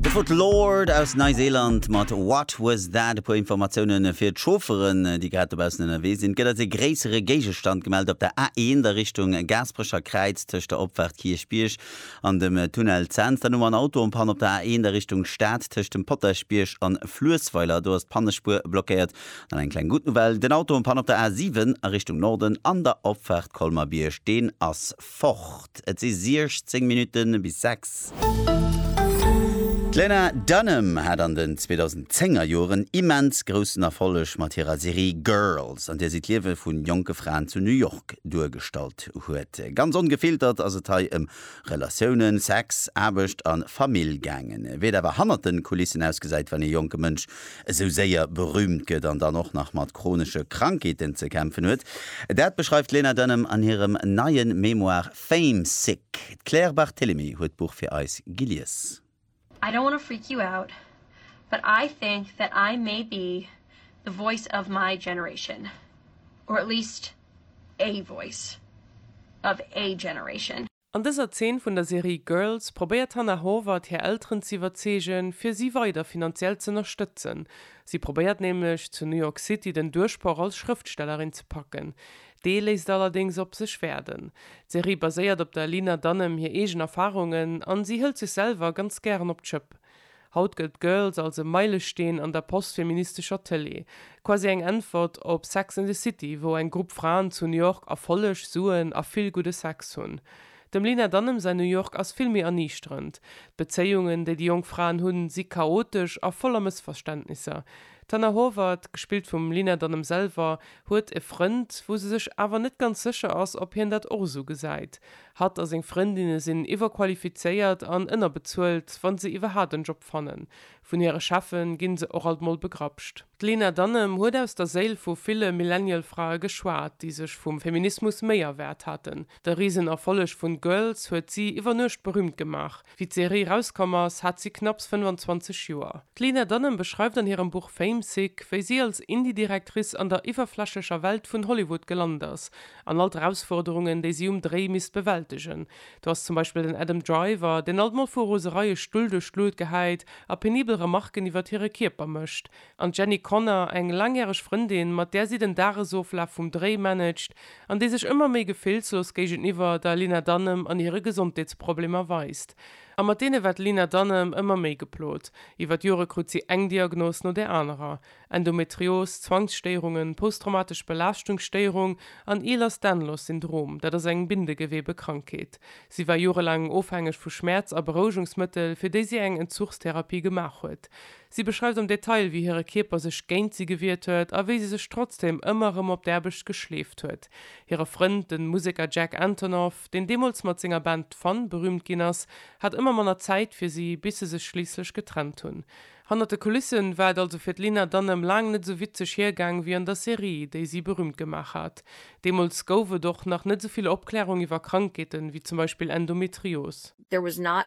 De Foot Lord aus Neiseeland mat What Was That? E puer Informatiounen fir d'Chaufferen, déi grad dobaussen ënnerwee sinn. Et gëtt eis ee gréissere Géigestand gemellt op der A1 a Richtung Gaasperecher Kräiz tëscht der Opfaart Kierchbierg an dem Tunnel Zens. Dann hu mer en Auto en Panne op der A1 a Richtung Stad tëscht dem Potaschbierg an Fluessweiler. Do ass d'Pannespuer blockéiert. Dann eng kleng gutt Nouvelle, Den Auto en Panne op der A7 a Richtung Norden an der Opfaart Colmer-Bierg, deen ass fort. Et si 16 Minutte bis 6. D'Lena Dunham hat an den 2010 er Joren immens groussen Erfolleg mat hirer Serie Girls, an där si d'Liewe vu jonke Fraen zu New York duergestallt huet. Ganz ongefiltert ass et hei ëm Relatiounen, Sex, Aarbecht a Famill gaangen. Wéi et awer hannert de Kulissen ausgesäit, wann ee jonke Mënsch esou séier berüümt gëtt an dann och nach mat chronesche Krankheeten ze kämpfen huet, dat beschreift d'Lena Dunham an hirem neie Memoir Fame Sick. D'Claire Barthelemy huet d'Buch fir eis gelies. I don't wanna freak you out, but I think that I may be the voice of my generation, or at least a voice of a generation. An dëser Zeen vun der Serie Girls probéiert d'Hannah Horvath hir Elteren z'iwwerzeegen, fir si weider finanziell z'ënnerstëtzen. Si probéiert nämlech, zu New York City den Duerchbroch als Schrëftstellerin ze packen. Dee léisst allerdéngs op sech waarden. D'Serie baséiert op der Lena Dunham hir eegen Erfarungen an si hëlt sech selwer ganz gären op d'Schëpp. Haut gëllt Girls als e Meilesteen an der postfeministescher Tëlee, quasi eng Äntwert op Sex and the City, wou eng Grupp Fraen zu New York Erfolleg, Suen a vill gudde Sex hunn. Dem Lena Dunham säin New York ass vill méi erniichterend. D'Bezéiungen, déi déi jonk Fraen hunn, si chaotesch a voller Mëssverständnisser. D'Hannah Horvath, gespillt vum Lena Dunham selwer, huet e Frënd, wou se sech awer net ganz sécher ass, ob hien dat och esou gesäit. Hatt a seng Frëndinne sinn iwwerqualifizéiert an ënnerbezuelt, wa se iwwerhaapt en Job fannen. Vun hire Cheffe gi se och alt mol begrapscht. D'Lena Dunham huet aus der Séil vu ville Millennial-Frae geschwat, déi sech vum Feminismus méi erwaart haten. De Risenerfolleg vun Girls huet si iwwer Nuecht berüümt gemaach. Wéi d'Serie rauskomm ass, hat si knapps 25 Joer. D'Lena Dunham beschreift an hirem Buch Fame Sick, wéi si als Indie-Directrice an der iwwerflächlecher Welt vun Hollywood gelant ass an all d'Erausforderungen, déi si um Dréi misst bewältegen. Do ass zum Beispill den Adam Driver, deen alt mol vu Rosereie Stull duerch d'Luut gehäit a penibel Remarken iwwert hire Kierper mécht. An d'Jenny Connor, eng laangjäreg Frëndin, mat där si den Dagesoflaf vum Dréi managt an déi sech ëmmer méi gefillslos géigeniwwer der Lena Dunham an hire Gesondheetsproblemer weist. A mat deene war d'Lena Dunham ëmmer méi geplot. Iwwer d'Jore krut si eng Diagnos no där anerer, Endometrios, Zwangsstéierungen, posttraumatesch Belaaschtungsstéierung an Ehlers-Danlos Syndrom, dat ass eng Bindegewebekrankheet. Si war jorelaang ofhängeg vu Schmäerz a Berouegungsmëttel, fir déi si eng Entzuchstherapie gemaach huet. Si beschreift am Detail, wéi hire Kierper sech géint si gewiert huet a wéi si sech trotzdeem ëmmer erëm op d'Aarbecht geschleeft huet. Hire Frënd, de Museker Jack Antonoff, deen deemools mat senger Band Fun berüümt ginn ass, hat ëmmer manner Zäit fir si, bis se sech schliisslech getrennt hunn. Hannert de Kulisse war et also fir d'Lena Dunham laang net esou witzeg hiergaang wéi an der Serie, déi si berüümt gemaach hat. Deemools gouf et och nach net esou vill Opklärung iwwer Krankheeten, wéi zum Beispill Endometrios. There was not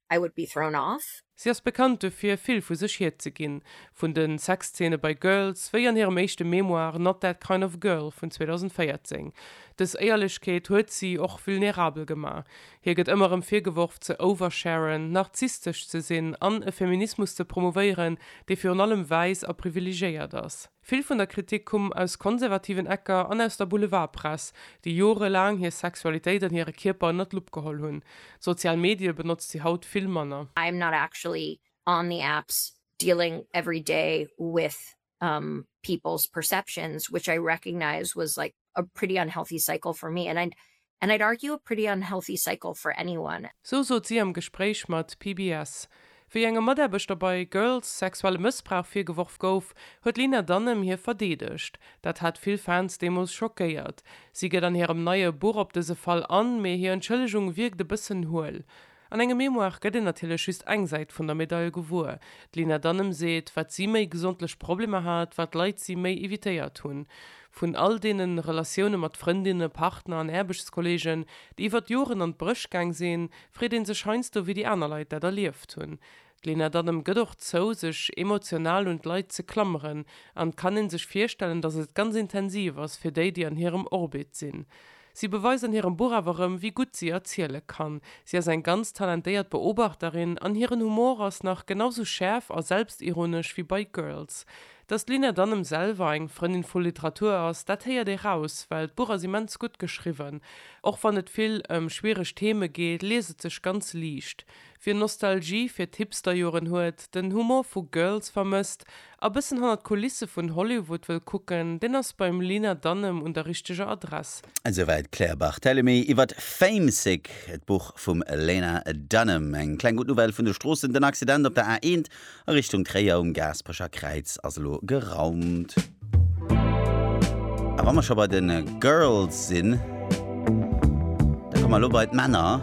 I would be thrown off. Si ass bekannt dofir, vill vu sech hierzeginn, vun de Sexzeene bei Girls, wéi an hirem éischte Memoir Not That Kind of Girl vun 2014. Dës Éierlechkeet huet si och vulnerabel gemaach. Hir gëtt ëmmer erëm virgeworf, ze oversharen, narzisstesch ze sinn an e Feminismus ze promouvéieren, dee virun allem wäiss a privilegéiert ass. Vill vun der Kritik kumm aus konservativen Ecker an aus der Boulevardpress, déi jorelaang hir Sexualitéit an hire Kierper ënnert d'Lupp geholl hunn. D'sozial Medie benotzt si haut vill manner. I am not actually on the apps dealing every day with people's perceptions, which I recognize was like a pretty unhealthy cycle for me and and I'd argue a pretty unhealthy cycle for anyone. Sou sot si am Gespréich mat PBS. Wéi engem Mataarbechter bei Girls sexuelle Mëssbrauch virgeworf gouf, huet d'Lena Dunham hie verdeedegt. Dat hat vill Fans deemools schockéiert. Si gëtt an hirem neie Buch op dëse Fall an, mee hir Entschëllegung wierkt e bëssen huel. An engem Memoire gëtt een natierlech just eng Säit vun der Medail gewuer. D'Lina Danem seet, wat si méi gesondlech Problemer hat, wat Leit si méi evitéiert hunn. Vun all deene Relatioune mat Frëndinne, Partner an Aarbechtskolleegen, déi iwwert Joren an d'Bréch gaang sinn, freet ee sech heiansdo, wéi déi aner Leit dat erlieft hunn. D'Lena Dunham gëtt och zou, sech emotional un d'Leit ze klammeren, an et kann een sech virstellen, datt et ganz intensiv ass fir déi, déi an hirem Orbit sinn. Si beweist an hirem Buch awer erëm, wéi gutt si erziele kann. Si ass eng ganz talentéiert Beobachterin, an hiren Humor ass nach genau sou schäerf a selbstironesch wéi bei Girls. Datt d'Lena Dunham selwer eng Frëndin vu Literatur ass, dat héiert ee raus, well d'Buch ass immens gutt geschriwwen. Och wann et vill ëm schwiereg Theme geet, liest et sech ganz liicht. Wien Nostalgie fir d'Hipsterjoren huet, den Humor vu Girls vermësst a bëssen hannert d'Kulisse vun Hollywood wëll kucken, deen ass beim Lena Dunham un der richteger Adress. Esouwäit d'Claire Barthelemy iwwert Famesick, d'Buch vum Lena Dunham. Eng kleng gutt Nouvelle vun de Stroossen, Den Accident op der A1 A Richtung Tréier um Gaasperecher Kräiz ass elo geraumt. A wa mer scho bei de Girls sinn, da komme mer elo bei d'Männer.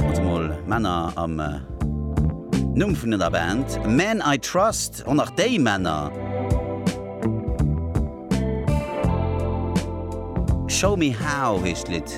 Also mol Männer am Numm vun der Band Men I Trust, och nach déi Männer. Show Me How heescht d'Lidd.